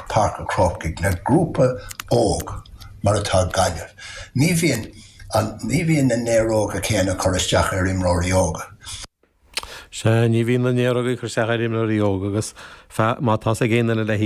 Páirc an Chrócaigh le grúpa óg mar atá Gaillimh, ní bhíonn an ní bhíonn na néaróga céanna ag cur isteach ar imreoirí óga. Sea, ní bhíonn na néaróga ag cur isteach ar imreoirí óga agus má tá's ag aon duine le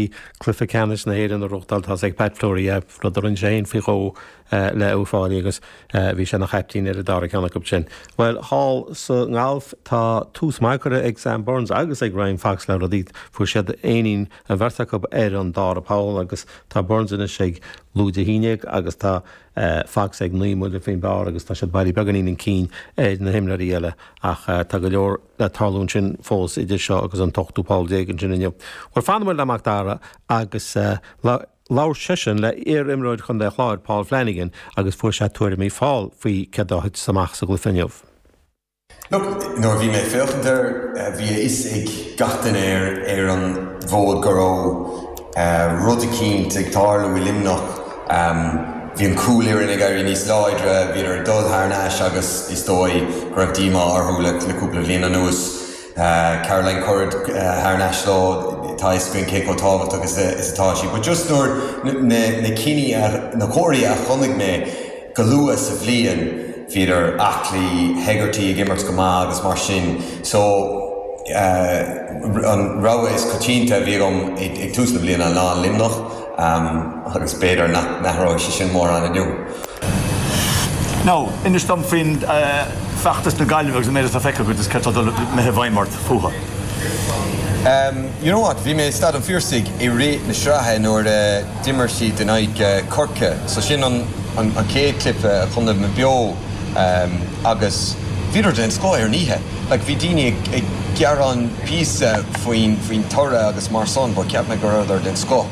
cluiche ceannais na hÉireann a reáchtáil tá's ag Pat Fleury é, rud a rinne sé féin faoi dhó. eh, le Uí Fáilí agus eh, bhí sé ina chaiptín ar an dara ceann acu sin. Bhuel, thall sa ngalf tá tús maith curtha ag Sam Burns agus ag Ryan Fox le rudaí. Fuair siad éinín, an bheirt acu ar an dara poll agus tá Burns anois ag lúide a haon déag agus tá eh, Fox ag naoi mbuille faoin bpar agus tá siad bailí beagáinín chun cinn ar na himreoirí eile ach eh, tá go leor le tarlú ansin fós idir seo agus an t-ochtú poll déag ansin inniu. Bhuel, fanfaidh muid le Mac Dara agus eh, lá- Labhair seisean le iar-imreoir Chontae an Chláir, Paul Flanagan, agus fuair sé tuairimí Phaul faoi céard a thit amach sa gcluiche inniu. Look, nuair a bhí mé ag féachaint air, bhí a fhios ag gach duine ar an bhfód go raibh rud eicínt ag tarlú i Luimneach. Bhí an chúl-fhoireann ag éirí níos láidre, bhíodar ag dul thar n-ais agus is dóigh go raibh díomá orthu le cúpla bhliain anuas. Tá Caroline Currid thar n-ais leo, tá a fhios againn cé chomh tábhachtach is atá sí. But just nuair na na cinní a na comharthaí a chonaic mé go luath sa bhliain, bhíodar aclaí, Hegarty ag imirt go maith agus mar sin. So an rogha is coitianta a bhí agam ag tús na bliana ná Luimneach. agus b'fhéidir nach n-athróidh sé sin mórán inniu. Now, inis dom faoi fheachtas na Gaillimhe agus an méid atá feicthe agat agus céard atá ag dul i mbith i bhfeidhm ort fúthu. You know what, bhí mé i Staid an Phiarsaigh i rith na sraithe nuair a d'imir siad in aghaidh Chorcaí, so sin an chéad clip a chonaic mé beo, agus bhíodar den scoth ar an oíche. like bhí daoine ag gearán píosa faoin faoin toradh agus mar san but cheap mé go rabhadar den scoth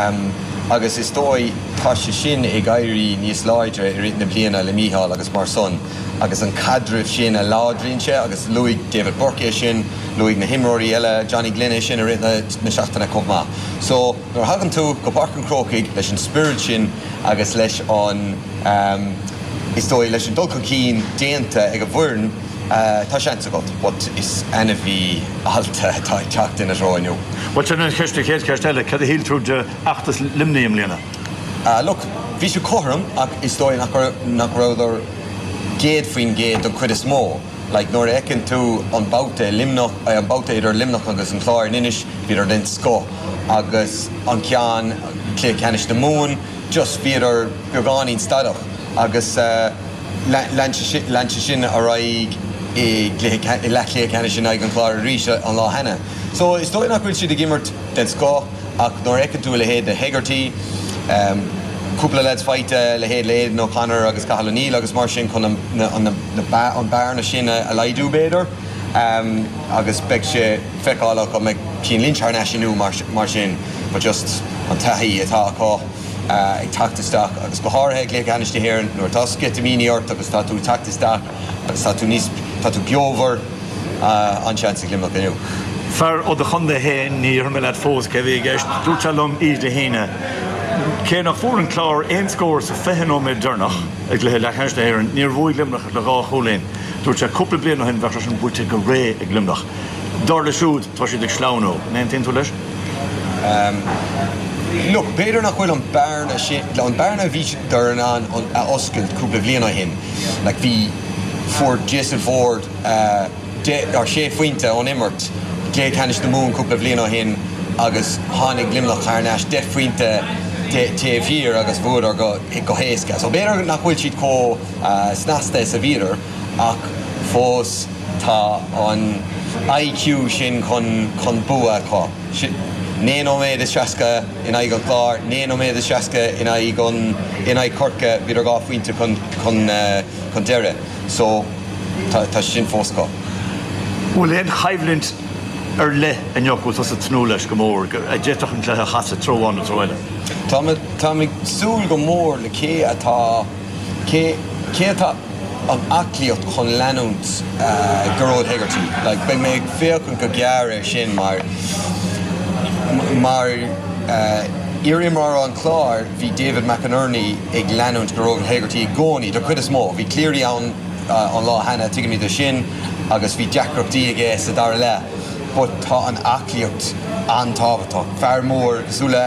ehm agus is dóigh tá sé sin ag éirí níos láidre i rith na bliana le Mícheál agus mar san agus an caidreamh sin a láidríonn sé agus luaigh David Burke é sin luaigh na himreoirí eile Johnny Glynn é sin i rith na na seachtaine chomh maith so nuair a thagann tú go Páirc an Chrócaigh leis an spiorad sin agus leis an ehm is dóigh leis an dul chun cinn déanta ag an bhfoireann Tá seans agat, but is ainmhí allta atá ag teacht ina dtreo inniu. Bhuel, sin an cheist, an chéad cheist eile, cad a shíl tú de fheachtas Luimnigh i mbliana? Ah, look, bhí sé cothrom ach is dóigh nach raibh, nach rabhadar céad faoin gcéad don chuid is mó. Like, nuair a fheiceann tú an babhta i Luimneach, an babhta idir Luimneach agus an Clár in Inis, bhíodar den scoth agus an ceann, Cluiche Ceannais na Mumhan, just bhíodar beagáinín stadach agus eh, Lean sé sin ar aghaidh i leathchluiche ceannais in aghaidh an Chláir arís an lá cheana. So is dóigh nach bhfuil siad ag imirt den scoth ach nuair a fheiceann tú a leithéid de Hegarty, cúpla leaids faighte, a leithéid de Aidan O'Connor agus Cathal O'Neill agus mar sin chun an bearna sin a laghdú b'fhéidir agus beidh sé le feiceáil an mbeidh Cian Lynch thar n-ais inniu mar sin but just an taithí atá acu. ag teacht isteach, agus go háirithe ag Cluiche Ceannais na hÉireann, nuair atá sceitimíní ort agus tá tú ag teacht isteach agus tá tú níos, tá tú beomhar, an-seans ag Luimneach inniu. Fear ó do chontae fhéin, ní déarfaidh mé leat fós cé a bhí i gceist, dúirt sé liom oíche Dé hAoine, cé nach bhfuair an Clár aon scór sa 20 nóiméad deireanach i gcluiche leathcheannais na hÉireann, níor bhuaigh Luimneach ach le dhá chúilín. Dúirt sé cúpla bliain ó shin bheadh sé sin buaite go réidh ag Luimneach. Dar leis siúd, tá siad ag sleamhnú. An aontaíonn tú leis? Look, b'fhéidir nach bhfuil an bearna sin, an bearna a bhí siad in ann a oscailt cúpla bhliain ó shin, like bhí, fuair Jason Forde deich, or sé phointe ón imirt i gcluiche ceannais na Mumhan cúpla bhliain ó shin agus tháinig Luimneach thar n-ais deich bpointe taobh thiar agus bhuadar go héasca. So b'fhéidir nach bhfuil siad chomh snasta is a bhíodar. ach fós tá an I.Q. sin chun bua acu. Naoi nóiméad is seasca in aghaidh an Chláir, naoi nóiméad is seasca in aghaidh Chorcaí, bhíodar dhá phointe chun deiridh so tá sé sin fós acu. An bhfuil aon choimhlint ar leith inniu a bhfuil tusa ag tnúth leis go mór, a d'fhéadfadh an cluiche a chasadh treo amháin nó treo eile? Táim ag súil go mór le cé atá. Cé atá an aclaíocht chun leanúint Gearóid Hegarty like beidh mé ag féachaint go gearr ar sin mar mar iar-imreoir an Chláir bhí David McInerney ag leanúint Gearóid Hegarty i gcónaí don chuid is mó bhí Cleary ann an lá cheana tuigimid é sin agus bhí deacrachtaí aige sa dara leath but tá an aclaíocht an-tábhachtach fear mór cosúil le